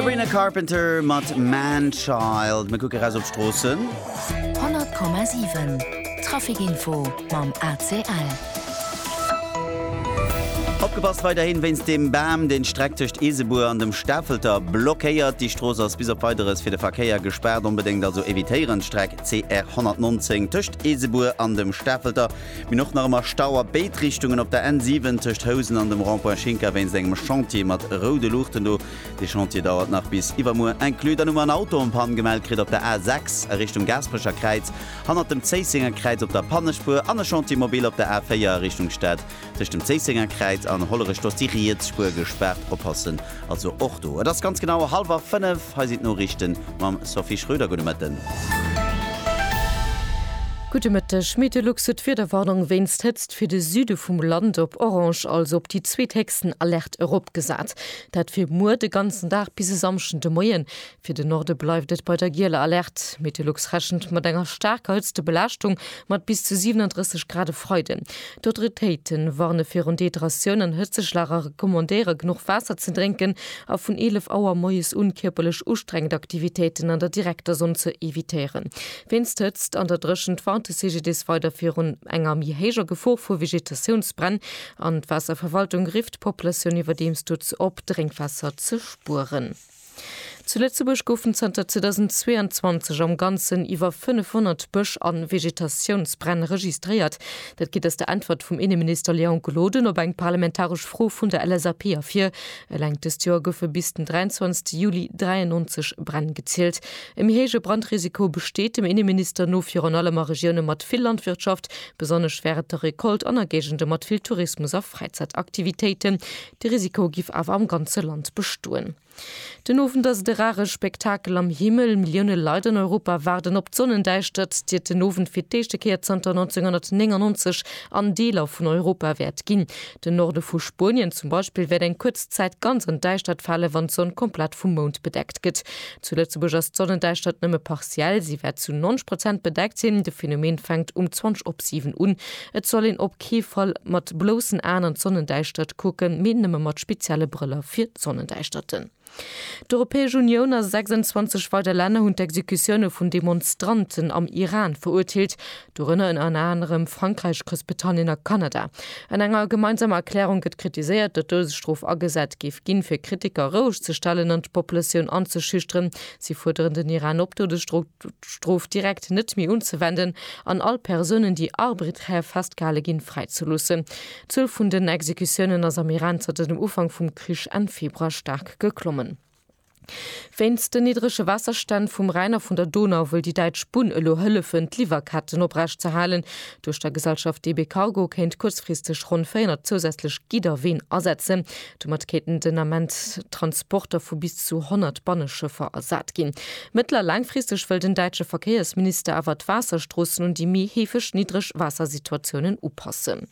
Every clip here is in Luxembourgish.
Sabrina Carpenter mat Man Child. Mir kucke raus op d'Stroossen. 100,7 Traficinfo mam ACL. Opgepasst weiderhin wéinst dem Bam, deen d'Streck tëscht Eesebuer an dem Stafelter blockéiert. Déi Strooss ass bis op Weideres fir de Verkéier gespaart. Onbedéngt also evitéieren d'Streck CR 119 tëscht Eesebuer an dem Stafelter. Min och nach ëmmer Stau a béid Richtungen op der N7 tëscht Housen an dem Rond-Point Schinker wéinst engem Chantier mat roude Luuchten do. De Chantier dauert nach bis iwwermuer inclus. Dann hu mer en Auto en Panne gemellt kritt op der A6 a Richtung Gaasperecher Kräiz, hannert dem Zéissenger Kräiz op der Pannespuer, an e Chantier mobile op der A4 a Richtung Stad tëscht dem Zéissenger Kräiz an Hollerech. Do ass déi riets Spuer gespaart. Oppassen also och do. Et ass ganz genau hallwer fënnef. Hei sinn d'Noriichten mam Sophie Schröder. Gudde Mëtten. Gudde Mëtteg. Meteolux huet d'Wiederwarnung wéinst Hëtzt fir de Süde vum Land op orange, also op déi zweethéchsten Alerte eropgesat. Dat fir muer de ganzen Dag bis e Samschden de Moien. Fir de Norde bleift et bei der gieler Alerte. Meteolux rechent mat enger staarker Hëtztebelaaschtung mat bis zu 37 Grad e Freiden. D'Autoritéite warne virun Dehydratioun an Hëtzeschlag a recommandéiere genuch Waasser ze drénken a vun 11 Auer moies un kierperlech ustrengend Aktivitéiten an der direkter Sonn ze evitéieren. Wéinst Hëtzt an der Dréchent warnt de CGDIS weider virun enger méi héijer Gefor vu Vegetatiounsbränn An d'Waasserverwaltung rifft d'Populatioun iwwerdeems dozou op, Drénkwaasser ze spueren. Zu Lëtzebuerg goufen zanter 2022 am Ganzen iwwer 500 Bësch a Vegetatiounsbränn registréiert. Dat geet aus der Äntwert vum Inneminister Léon Gloden op eng parlamentaresch Fro vun der LSAP ervir. Eleng dëst Joer goufe bis den 23 Juli 93 Bränn gezielt. E méi héije Brandrisiko besteet dem Inneminister no virun allem a Regioune mat vill Landwirtschaft, Besonnesch wär et de Recolte an a Géigende mat vill Tourismus a Fräizäitaktivitéiten. De Risiko giff awer am ganze Land bestoen. Den Owend ass et e rare Spektakel am Himmel. Millioune Leit an Europa waarden op d'Sonnendäischtert, déi et den Owend fir d'éischte Kéier zanter 1999 an Deeler vun Europa wäert ginn. Den Norde vu Spuenien zum Beispill wäert eng kuerz Zäit ganz an d'Däischtert fale wann d'Sonn komplett vum Mound bedeckt gëtt. Zu Lëtzebuerg ass d'Sonnendäischtert nëmme partiell, si wäert zu 90 Prozent bedeckt sinn. De Phenomen fänkt um 20 op 7 un. Et soll een op kee Fall mat bloussen Aen an d'Sonnendäischtert kucken, mee nëmme mat spezielle Brëller fir d'Sonnendäischterten. D'Europäesch Unioun a 26 weider Länner hunn d'Exekutioune vun Demonstranten am Iran verurteelt. Dorënner ënner anerem Frankräich, Groussbritannien a Kanada. An enger gemeinsamer Erklärung gëtt kritiséiert, datt d'Doudesstrof agesat géif ginn, fir Kritiker roueg ze stellen an d'Populatioun anzeschüchteren. Si fuerderen den Iran op, d'Doudesstrof direkt net méi unzewenden an all Persounen, déi arbriträr festgehale ginn, fräizeloossen. D'Zuel vun den Exekutiounen ass am Iran zanter dem Ufank vum Krich Enn Februar staark geklommen. Wéinst den niddrege Waasserstänn vum Rhäin a vun der Donau wëll déi däitsch Bunn elo hëllefen, d'Liwwerketten oprecht ze halen. Duerch der Gesellschaft DB Cargo kéint kuerzfristeg ronn 400 zousätzlech Gidder Ween asetzen. Domat kéinten den Ament Transporter vu bis zu 100 Banneschëffer ersat ginn. Mëttel a laangfristeg wëll den däitsche Verkéiersminister awer d'Waasserstroossen un déi méi heefeg niddreg Waassersituatiounen upassen.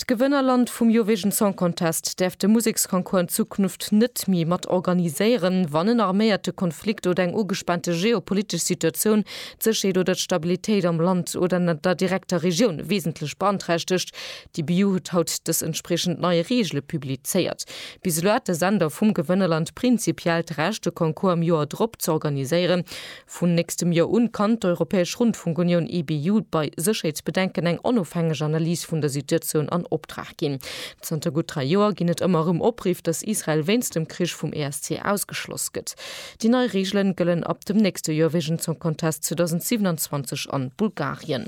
D'Gewënnerland vum Eurovision Song Contest däerf de Museksconcours an Zukunft net méi mat organiséieren, wann en arméierte Konflikt oder eng ugespaante geopolitesch Situatioun d'Sécherheet oder d'Stabilitéit am Land oder an der direkter Regioun wesentlech beanträchtegt. D'EBU huet haut dës entspriechend nei Reegele publizéiert. Bis elo hat de Sender vum Gewënnerland prinzipiell d'Recht, de Concours am Joer drop z'organiséieren. Vun nächstem Joer un kann d'Europäesch Rundfunkunioun, EBU, bei Sécherheetsbedenken eng onofhängeg Analys vun der Situatioun an Optrag ginn. Zanter gutt dräi Joer ginn et ëmmer erëm Opriff, dass Israel wéinst dem Krich vum ESC ausgeschloss gëtt. Déi nei Reegelen gëllen ab dem nächste Joer wégens Song Contest 2027 an Bulgarien.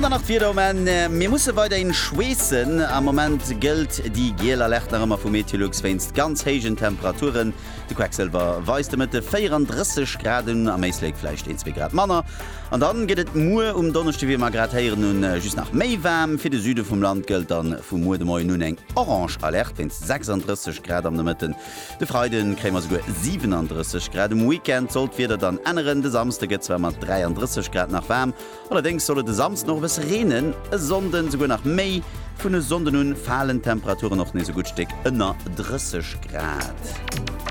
An dann nach d'Wieder um Enn, Mir musse weiderhin schweessen. Am Moment gëllt déi giel Alerte nach ëmmer vu Meteolux wéinst ganz héijen Temperaturen. De Quecksëlwer weist de Mëtte 34 Grad un, am Éislek vläicht een, zwee Grad manner. An dann gëtt et muer um Donneschde, wéi mer grad héieren hunn, just nach méi waarm. Fir de Süde vum Land gëllt dann vu muer de Moien un eng orange Alerte wéinst 36 Grad am Nomëtten. De Freiden kréie mer souguer 37 Grad. Um Weekend soll d'Wieder dann änneren, de Samsde gëtt zwar mat 33 Grad nach waarm, allerdéngs soll et e Samsden och e bësse reenen, e Sonnden souguer nach méi. Vun e Sonnden un falen d'Temperaturen och nees e gutt Stéck ënner 30 Grad.